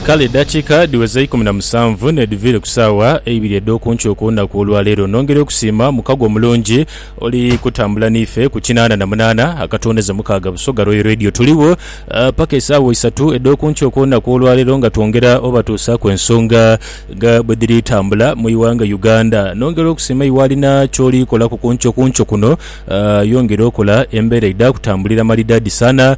Kale edakiika dhiweza ikumi na musanvu n'edhiviire ku saawa eibiri edh'oku nkyo ku lunaku olwa leero, nongera okusiima mukago omulungi oli kutambula n'ife ku kinaana na munaana akatwoneza mukaaga Busoga Royal Radio. Tuligho paka esaawa isatu edh'oku nkyo ku lunaku olwa leero nga twongera obatuusaaku ensonga nga bwe dhiri tambula mu ighanga Uganda. Nongera okusiima iwe alina ky'oli kolaku ku nkyo ku nkyo kuno, yongera okola embeera idha kutambulira malidaadi sana.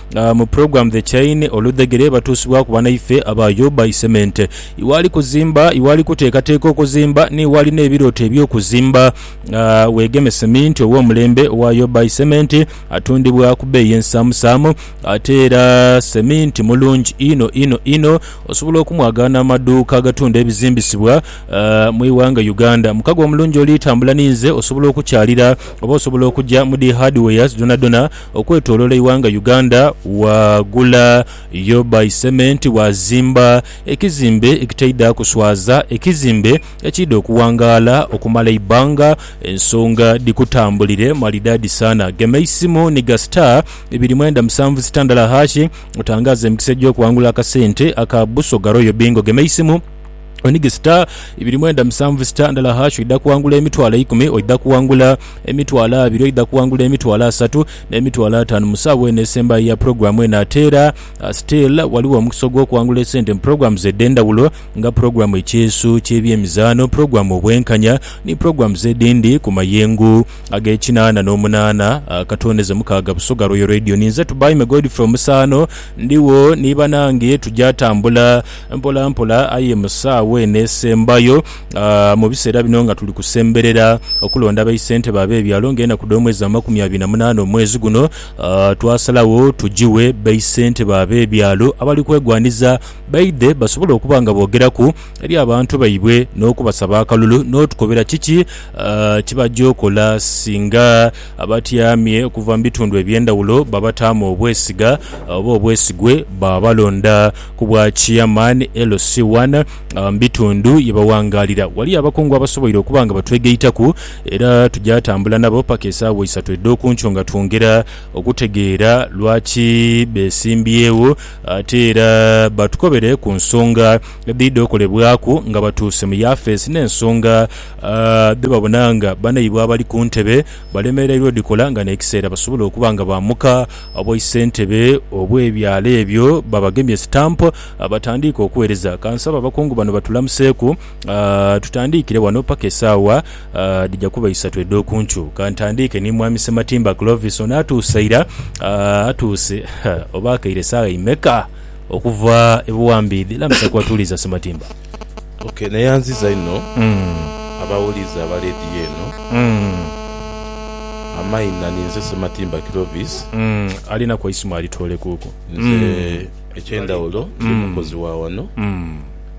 Ah, mu program The Chain, oludhegere batuusibwaku banaife abaayooba isemente. Iwe ali kuzimba, iwe ali kuteekateeka okuzimba, n'iwe alina ebirooto eby'okuzimba, ah, weegeme seminti ow'omulembe owaayooba isementi atundibwa ku bbeeyi ensaamusaamu. Ate era seminti mulungi inho inho inho, osobola okumwagaana mu maduuka agatunda ebizimbisibwa, ah, mu ighanga Uganda. Mukago omulungi oli tambula ninze, osobola okukyalira oba osobola okuja mu dhi hardwares dhonadhona, Okwetolola eighanga Uganda waagula yo by cement waazimba ekizimbe ekitaidha kuswaza ekizimbe ekiidha okuwangaala okumala eibbanga ensonga dhikutambulire malidaadi saana gema eisimu ni ga star ibiri mwenda musanvu sitandala hashi otangaaze emikisa egy'okuwangula akasente aka Busoga Royal Bingo gema eisimu Onige sita ibiri mwenda musanvu sita ndala hash oidha kuwangula emitwalo eikumi oidha kuwangula emitwalo abiri oidha kuwangula emitwalo asatu n'emitwalo atanu mu sawa eno esembayo eya program eno ate era uh, still waliwo omukisa ogw'okuwangula esente mu programs edh'endhawulo nga program ekyeesu ky'ebyemizaano program obwenkanya ni programs edhindi ku mayengo ag'ekinaana n'omunaana uh, katondeze mukaaga busoga royal radio ninze tubaime godfrey omusaano ndiwo ni banange tujja tambula Mpolampola aye mu saawa eno esembayo, mu biseera bino nga tuli kusemberera okulonda baisentebe ab'ebyalo nga enaku dh'omwezi amakumi abiri na munaana omwezi guno, twasalagho tujiwe baisentebe ab'ebyalo abali kwegwaniza baidhe basobole okuba nga boogeraku eri abantu baibwe n'okubasaba akalulu n'otukobera kiki kye baja okola singa Abatyamye okuva mu bitundu eby'endhawulo babataamu obwesiga oba obwesigwe baabalonda ku bwa Chairman, LC One. Mu bitundu ye baghangaalira ghaliyo abakungu abasoboire okuba nga batwegaitaku era tuja tambula nabo paka esaawa isatu edh'okunkyo nga twongera okutegeera lwaki beesimbyewo ate era batukobere ku nsonga edhidha okolebwaku nga batuuse mu yafeesi n'ensonga dhe babona nga banaibwe abali ku ntebe balemereirwa odhikola nga n'ekiseera basobola okuba nga baamuka obwaisentebe obw'ebyalo ebyo babagemye stamp batandiike okuweereza. Ka nsabe abakungu bano batulamuseeku tutandiikire wano paka esaawa dhija kuba isatu edh'oku nkyo. Ka ntandiike ni Mwami Ssematimba Clovis, ono atuuse ira, atuuse oba akaire saagha imeka okuva e Buwambiidhi? Lamusa ku atuuliza Ssematimba. Ok neyanziza inho abawuliza aba lediyo eno amaina ninze Sematimba Clovis. Alinaku eisimu alitoolekuuku. Nze ekyendawulo ndi mukozi wa wano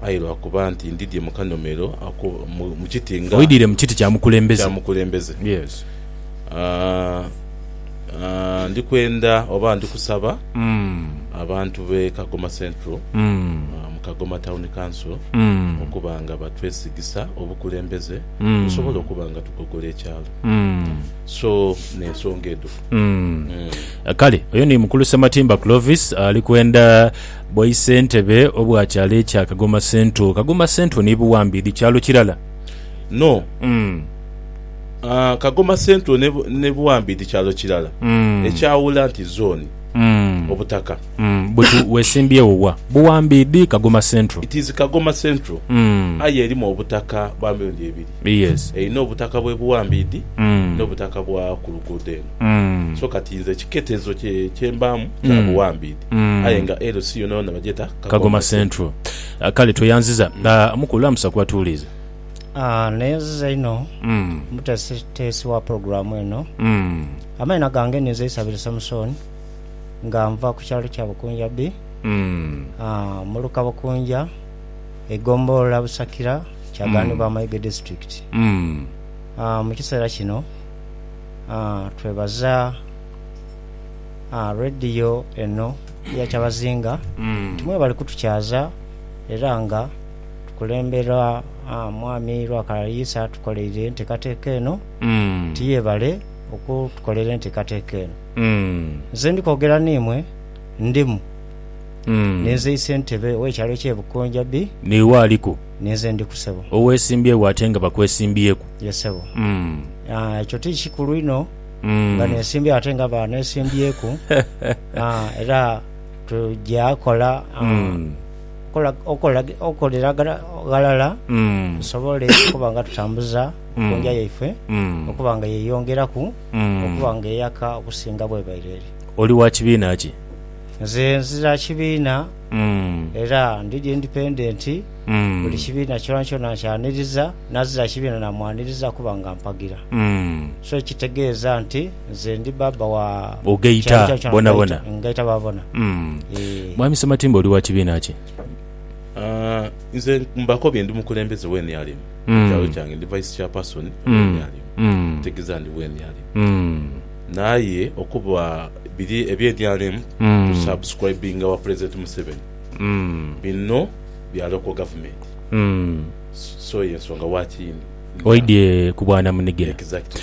aye lwakuba nti ndidhye mu kanomero ako mu kiti nga. Oidhire mu kiti kya mukulembeze. Kya mukulembeze. Yes. Ndi kwenda oba ndi kusaba abantu b'e Kagoma Central mu Kagoma Town Council okuba nga batwesigisa obukulembeze tusobole okuba nga tugogola ekyalo. So n'ensonga edho. Kale oyo ni Mukulu Ssematimba Clovis ali kwenda bwaisentebe obwa kyalo ekya Kagoma Central. Kagoma Central ni Buwambi dhi kyalo kirala? No. Ah, Kagoma Central ne, ne Buwambi dhi kyalo kirala. Mm. Ekyawula nti zooni, Mm. obutaka. Mm, Butu, wesimbyewo wa? Buwambi dhi Kagoma Central. It is Kagoma Central, Mm. aye erimu obutaka bwa mirundi ebiri. Yes. Erina obutaka bw'e Buwambi dhi, Mm. n'obutaka bwa ku luguudo eno. Mm. So kati nze ekiketezo kye, kye mbaamu kya Mm. Buwambi dhi. Mm. Aye nga LC yoonayoona bagyeta Kagoma Kagoma Central. Central. Ah, Kale tweyanziza. Ah, Mukulu lamusa ku batuwulizi. Ah, neeziza inho Mm. omuteesiteesi wa pulogulaamu eno. Mm. Amaina gange ninze Isabiri Samusooni nga nva ku kyalo kya Bukunja B, Mm. ah, mu luka Bukunja, eigombolola Busakira, Kyagaanibwa Amaige District. Mm. Ah, mu kiseera kino ah, twebaza ah, rediyo eno eya Kyabazinga Mm. nti mwebali kutukyaza era nga tukulemberwa Mwami Rwakalayisa atukoleire entekateka eno, ti yebale okutukolera entekateka eno. Nze ndi kwogera n'imwe ndimu, ninze Isentebe w'ekyalo eky'e Bukunjabi. N'iwe aliku? Ninze ndiku sebo. Owesimbyewo ate nga bakwesimbyeku? Ye sebo. Ekyo ti kikulu inho nga nesimbyewo ate nga banesimbyeku era tuja kola. okukolera ghalala tusobole okuba nga tutambuza enkoondha yaife okuba nga yeeyongeraku okuba nga eyaka okusinga bw'ebaire eri. Oli wa kibiina ki? Nze nzira kibiina era ndi indipendenti, buli kibiina kyonakyona nkyaniriza, n'azira kibiina naamwaniriza kuba nga ampagira. So ekitegeeza nti Nze ndi Bbaabba wa Ogaita kyali kya bonabona. ngaita ngaita baabona. Mm. Eeh. Mwami Sematimba oli wa kibiina ki? Aah, nze mbakobye ndi mukulembeze we NRM mu kyalo Mm. kyange, ndi Vice Chairperson we Mm. NRM, Mm. ekitegeza ndi we NRM. Mm. Naye okuba biri ebye NRM Mm. tu subscribinga wa President Museveni, Mm. binno bya local government, Mm. so yensonga lwaki ndi Oidye ku bwanamunigina. Exactly.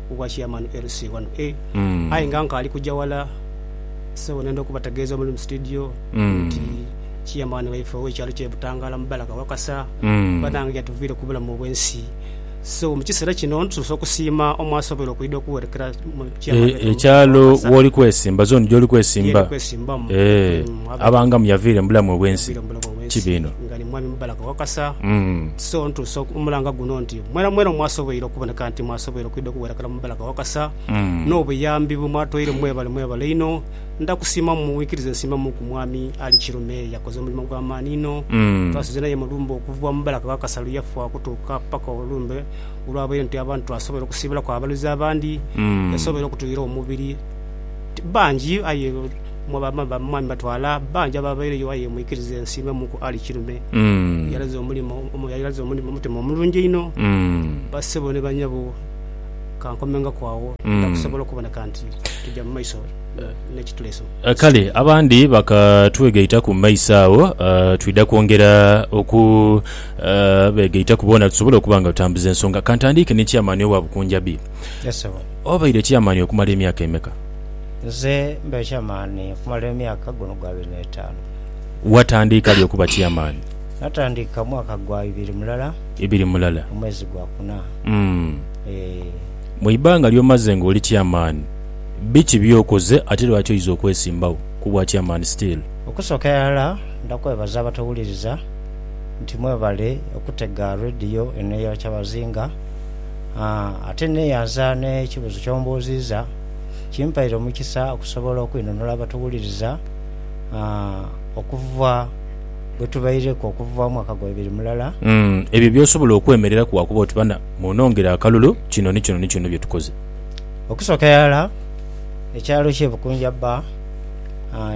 obwa chairman LC wano e aye nga nkaali kuja wala so nenda okubategeeza omuli mu studio nti chairman waife ow'ekyalo kye Butangala Mubalaka Wakasa banange yatuviire ku bulamu obw'ensi so mu kiseera kino ntusoose okusiima omwasobola okwidha okuwerekera mu chairman E- waife ekyalo Mubalaka Wakasa. woli kwesimba zone gyoli kwesimba Yeri kwesimbamu. Eh, Mm, waba- abangamu yaviire mu bulamu obwensi Yaviire mu bulamu obwensi. kibiino nga ni mwami Mubalaka Wakasa Mm. so ntuusa oku- omulanga guno nti Mwena mwena omwasoboire okuboneka nti mwasoboire okwidha okuwerekera mu Balaga Wakasa n'obuyambi bwe mwatoire mwebale mwebale inho. Ndha kusiima mu wikiriza ensiimamuuku Mwami Ali Kirume yakoze omulimo gwa maani inho. Twasuze naye mu lumbe okuva mu Balaga Wakasa lwe yafa okutuuka paka olumbe olwabaire nti abantu twasobola okusiibulaku abaluzi abandi yasobola okutuyira omubiri bangi aye Mu Mwami batwala bangi abaabaireyo aye mwikirize ensiime mu ku Ali Kirume eyalaze omulimo eyalaze omulimo omutima omulungi einho. Bassebo ni banyabo kankomengako agho nja kusobola okuboneka nti tugya mu maiso n'ekituleese. Kale abandi bakatwegaitaku mu maiso agho twidha kwongera okubeegaitaku boona tusobole okuba nga tutambuza ensonga. Kantandiike ni Chairman owa Bukunjabi. Obaire Chairman okumala emyaka emeka? Nze mbe chairman okumala emyaka guno gwa abiri n'etaanu. Watandiika li okuba chairman? Natandika mwaka gwa ibiri mulala. Ibiri mulala. Omwezi gwa kuna. Umm. Eeh. Mu ibanga ly'omaze nga oli chairman, biki by'okoze ate lwaki oiza okwesimbagho ku bwa chairman still? Okusooka irala ndakwebaza abatowuliriza nti mwebale okutega Radio eno eya Kyabazinga. Aa, ate neyanza n'ekibuzo ky'ombuuziiza. kimpaire omukisa okusobola okwinunula abatuwuliriza okuva bwe tubaireku okuva omwaka gwa ibiri mulala. Ebyo by'osobola okwemereraku wakuba oti bana munongere akalulu kino ni kino ni kino bye tukoze? Okusooka irala, ekyalo kye Bukunja bba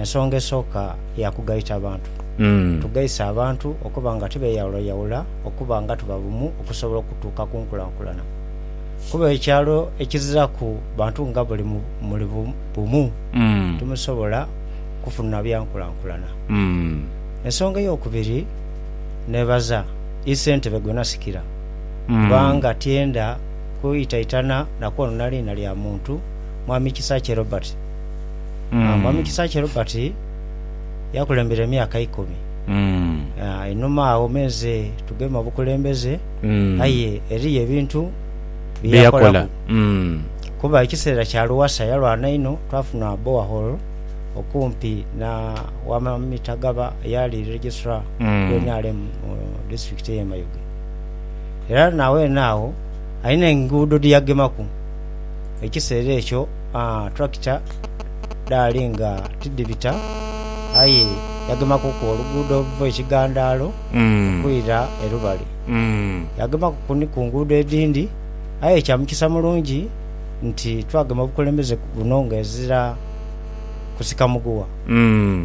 ensonga esooka ya kugaita bantu. Tugaise abantu okuba nga tibeyawulayawula okuba nga tuba bumu okusobola okutuuka ku nkulankulana. Kuba ekyalo ekiziraku bantu nga buli muli bumu timusobola kufuna byankulankulana. Ensonga eyokubiri nebaza i ssentebe gwenasikira kubanga tyenda kwitaitana na kwonona liina lya muntu Mwami Kisakye Robert. Mwami Kisakye Robert yakulembera emyaka ikumi einhuma agho menze tugeme obukulembeze. aye eriyo ebintu bye yakolaku. Kuba ekiseera kya Lowassa yalwana inho, twafuna borehole okumpi na wama Mitagaba eyaali Registrar wa nrm mu disitulikiti eye Mayuge. Era na weene agho alina enguudo dhe yagemaku. Ekiseera ekyo tractor dhaali nga tidhibita aye yagemakuku oluguudo oluva e Kigandaalo. okwira e Lubali. Yagemaku ku ni ku nguudo edhindi, aye kya mukisa mulungi nti twagema obukulembeze buno ng'ezira kusika muguwa.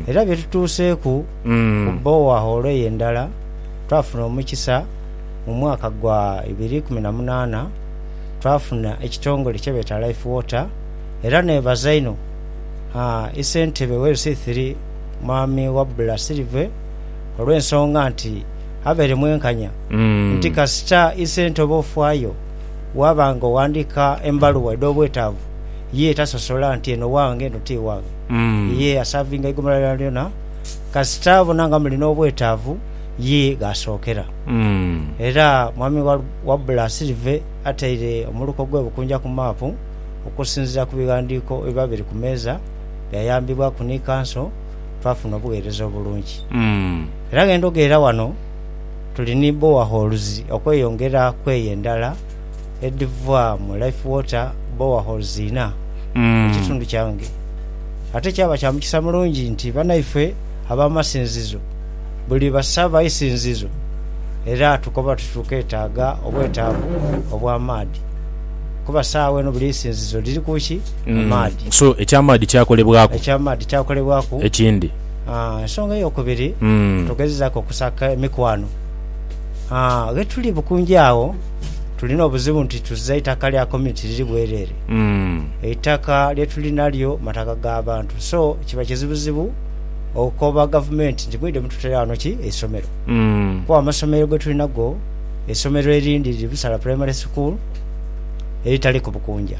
Era bye tutuuseeku ku bowahoolo eyo endala, twafuna omukisa mu mwaka gwa ibiri ikumi na munaana twafuna ekitongole kye beeta Life Water era neebaza inho Ssentebe w'Ebisithiri Mwami Wabula Silver, olw'ensonga nti avaire mwenkanya nti kasita isente oba ofaayo waaba nga oghandiika embaluwa edh'obwetaavu, ye tasosola nti eno wange eno ti wange. Ye asaavinga eigumira lyonalyona kasita abona nga muli n'obwetaavu ye gh'asookera. Era Mwami Wabula Asirive ataire omuluko gw'e Bukunja ku maapu okusinziira ku bighandiiko ebiba biri ku meeza byayambibwaku ni Kanso. twafuna obugheereza obulungi. Era gh'endhoga era ghano tuli ni bowaholes okweyongera ku eyo endala edhiva mu Life Water bowaholes inha mu kitundu kyange. Ate kyaba kya mukisa mulungi nti banaife ab'amasinzizo buli basaba eisinzizo era tukoba tuti tukeetaaga obwetaavu obw'amaadhi kuba saagha eno buli isinzizo liri ku ki? mu maadhi. So eky'amaadhi kyakolebwaku. Eky'amaadhi kyakolebwaku. Ekindi. Aa, ensonga ey'okubiri, tugezezaaku okusaka emikwano. Aa, ghe tuli bukungi agho, tulina obuzibu nti tuziza itaka lya community liri bwereere. Eitaka lye tuli nalyo mataka ga bantu. So, kiba kizibuzibu okoba gavumenti nti mwidhe mututeera ghano ki, eisomero. Kuba amasomero ge tuli nago, eisomero erindi liri Busala Primary School, eritaliku bukunja.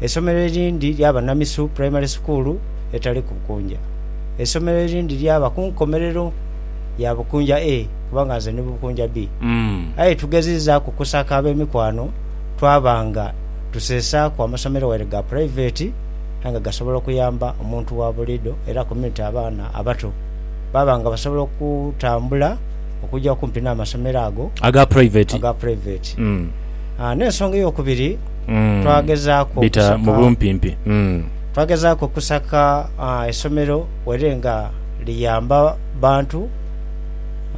Eisomero erindi lyaba Namisu Primary School etali ku Bukunja. Eisomero erindi lyaba ku nkomerero ya Bukunja A kubanga nze ndi mu Bukunja B. Aye tugezizaaku kusaka ab'emikwano twaba nga tusesaaku amasomero waire ga puraiveti aye nga gasobola okuyamba omuntu wa buliidho era community abaana abato baba nga basobola okutambula okuja okumpi n'amasomero ago aga puraiveti. N'ensonga ey'okubiri, Mm. twagezaaku Bita mu okusaka bumpimpi. Mm. twagezaaku okusaka ah, esomero were nga liyamba bantu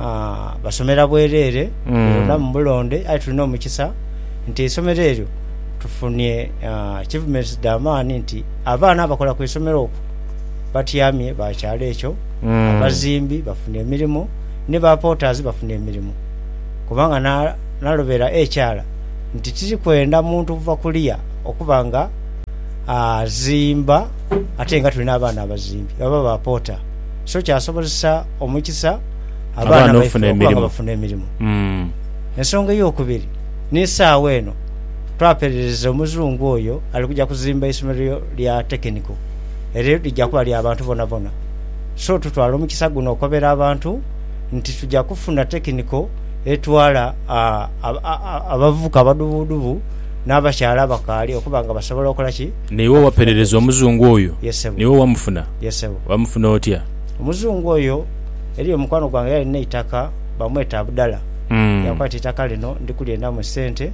ah, basomera bwereere Mm. beronda mu bulonde aye tulina omukisa nti eisomero eryo tufunye ah, achievements dha maani nti abaana abakola ku isomero okwo batyamye bakyala ekyo Mm. abazimbi bafuna emirimu ni ba porters bafuna emirimu kubanga na- nalobera ekyala nti tiri kwenda muntu kuva kuliya okuba nga azimba ate nga tuli n'abaana abazimbi oba ba poota. So kyasobozesa omukisa abaana baife okuba nga bafuna emirimo. Ensonga ey'okubiri ni saagho eno twaperereza Omuzungu oyo ali kuja kuzimba eisomero lya tekiniko eryo lija kuba lya bantu bonabona. So tutwala omukisa guno okobera abantu nti tuja kufuna tekiniko. etwala abavubuka abadubuudubu n'abakyala abakaali okuba nga basobola okola ki? Naiwe owaperereza omuzungu oyo? Ye ssebo. Naiwe owamufuna? Ye ssebo. Wamufuna otya? Omuzungu oyo, eriyo mukwano gwange eyalina eitaka bamweta Abdala, yankwata eitaka lino ndi kulyendamu sente.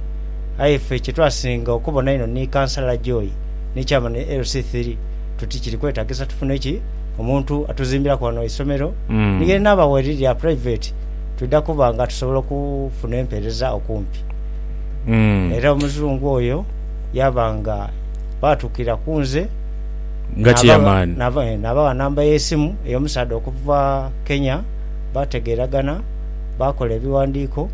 Aye ffe kye twasinga okubona einho ni kansala Joy ni chairman LC three tuti kiri kwetagisa tufune ki? Omuntu atuzimbiraku ghano eisomero. Ni ye naabawa eriri lya private. twidha kuba nga tusobola okufuna empeereza okumpi. Mm. Era Omuzungu oyo yaaba nga baatukira ku nze. Nga n'aba- chairman. n'aba- eh, Naabawa namba y'esimu ey'omusaadha okuva Kenya, baategeeragana, baakola ebiwandiiko,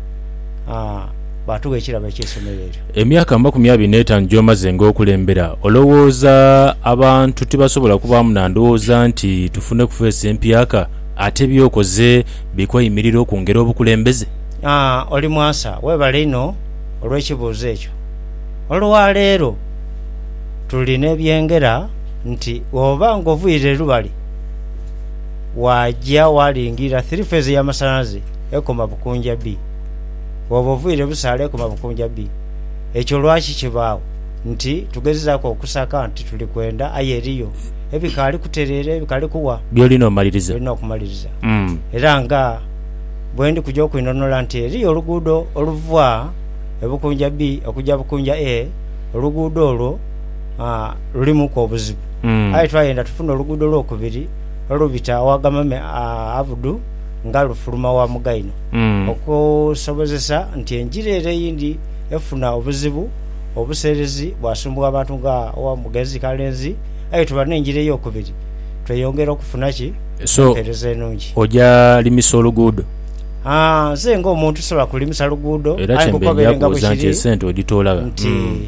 ah, baatugha ekirabo eky'eisomero eryo. Emyaka amakumi abiri n'etaanu gy'omaze ng'okulembera, olowooza abantu tibasobola kubaamu na ndowooza nti tufune ku feesi empyaka? Ate by'okoze Bi kweyimirira okungera obukulembeze. Aa oli mwasa. Webale inho olw'ekibuuzo ekyo. Olwaleero tuli n'ebyengera nti bw'oba ng'oviire Lubale waaja waalingira Three Phase ey'amasanhalaze ekoma Bukunja B. Bw'oba oviire Busaale ekoma Bukunja B. Ekyo lwaki kibaagho? Nti tugezezaaku okusaka nti tuli kwenda aye eriyo ebikaali kutereera, ebikaali kuwa. By'olina omaliriza. Olina okumaliriza. Mm. Era nga bwe ndi kuja okwinhonhola nti eriyo oluguudo oluva e Bukunja B okuja Bukunja A, oluguudo olwo, aa, lulimuuku obuzibu. Mm. Aye twayenda tufune oluguudo olwokubiri olubita aw'agamame a Abudu nga lufuluma wa Mugaino, Mm. okusobozesa nti engira ere eyindi efuna obuzibu obuseerezi bwasumbugha abantu nga owa Mugenzi Kalenzi, aye tuba n'engira ey'okubiri, tweyongera okufuna ki? So empeereza enungi. oja limisa oluguudo? Haa, nze nga omuntu sisobola kulimisa luguudo, Era aye kye mbeidha nkukobere nga kubuuza nti bwekiri esente odhitoola gha? nti Mm.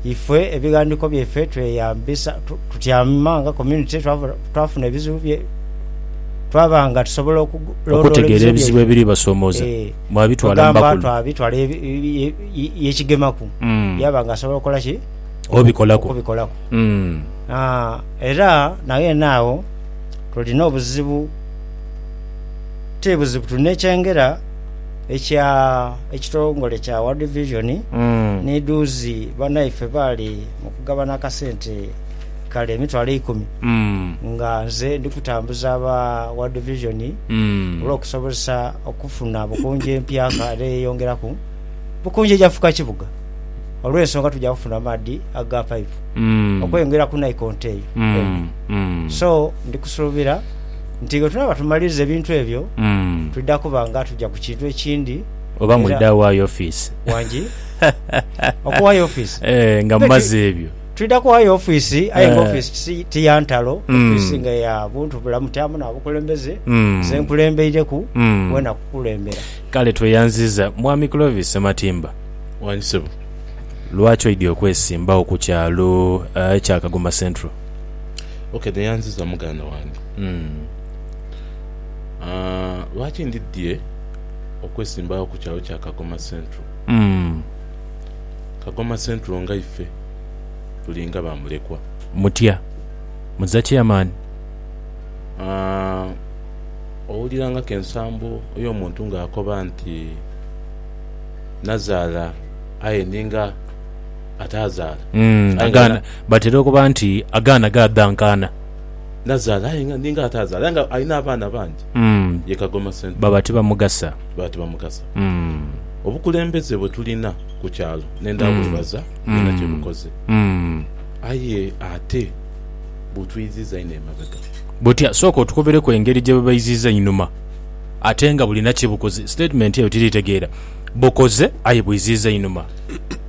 ife ebighandiiko byaife tweyambisa tu- tutyama nga community twaba- twafuna ebizibu bye twaba nga tusobola okugu- londoola Okutegeera ebizibu ebizibu byaife. ebiribasomooza, Eeh, mwabitwala mu kwegamba bakulu? twabitwala ye- ye- ye- ye- yekigemaku Mm. yaba nga asobola okukola ki? Obikolaku. okubikolaku. Mm. Haa, era naghene agho tulina obuzibu ti buzibu tuli n'ekyengera ekya ekitongole kya World Vision Mm. ni dhuuzi banaife baali mu kugabana akasente kale emitwalo eikumi Mm. nga nze ndi kutambuza aba World Vision Mm. olw'okusobozesa okufuna Bukunja empya kale eyeyongeraku Bukunja eja fuuka kibuga olw'ensonga tuja kufuna amaadhi aga paipu Mm. okweyongera ku naikonto eyo. Mm. So ndi kusuubira nti bwetunaaba tumaliriza ebintu ebyo, twidha kuba nga tuja ku kintu ekindi. Oba Era- mwidha waayo ofiisi. Wangi? Okuwaayo ofiisi? Eh, nga Mbe mumaze twi- ebyo. Twidha kuwaayo ofiisi, aye nga Eh. ofiisi tisi- ti ya ntalo, Mm. ofiisi nga ya buntu bulamu, ti amu n'abakulembeze. Mm. Nze nkulembeireku, Mm. wena kukulembera. Kale tweyanziza Mwami Clovis Sematimba. Wangi ssebo. Lwaki oidhi okwesimbawo ku kyalo eh, ekya Kagoma Central? Ok neyanziza muganda wange lwaki ndidhie okwesimbawo ku kyalo kya Kagoma Central? Kagoma Central nga ife tuli nga ba mulekwa. Mutya muza chairman? Owulira nga ku ensambo yo muntu nga akoba nti nazaala aye ninga. ataazaala. Mm, Aye nga agaana. Batera okuba nti agaana gaadha nkaana. Nazaala aye nga ninga ataazaala aye nga alina abaana bangi. Mm, Ye Kagoma Central. baba tibamugasa. Baba tibamugasa. Mm, Obukulembeze bwe tulina ku kyalo ne ndabwebaza bwona kye bukoze. mm. Aye ate butwiiziza einho emabega. Butya? Sooka otukobereku engeri gye bubaiziiza einhuma ate nga bulina kye bukoze. Statement eyo tiri tegeera. Bukoze aye bwiziiza einhuma.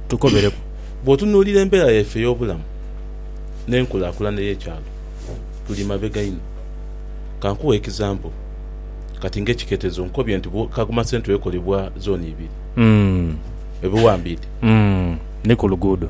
tukomereku. Bw'otunuulira embeera yaife ey'obulamu n'enkulaakulana ey'ekyalo, tuli mabega inho. Ka nkuwe ekisampo, Kati ng'ekiketezo nkobye nti Kagoma Central ekolebwa zooni ibiri, ebiwambiidhi ni ku luguudo.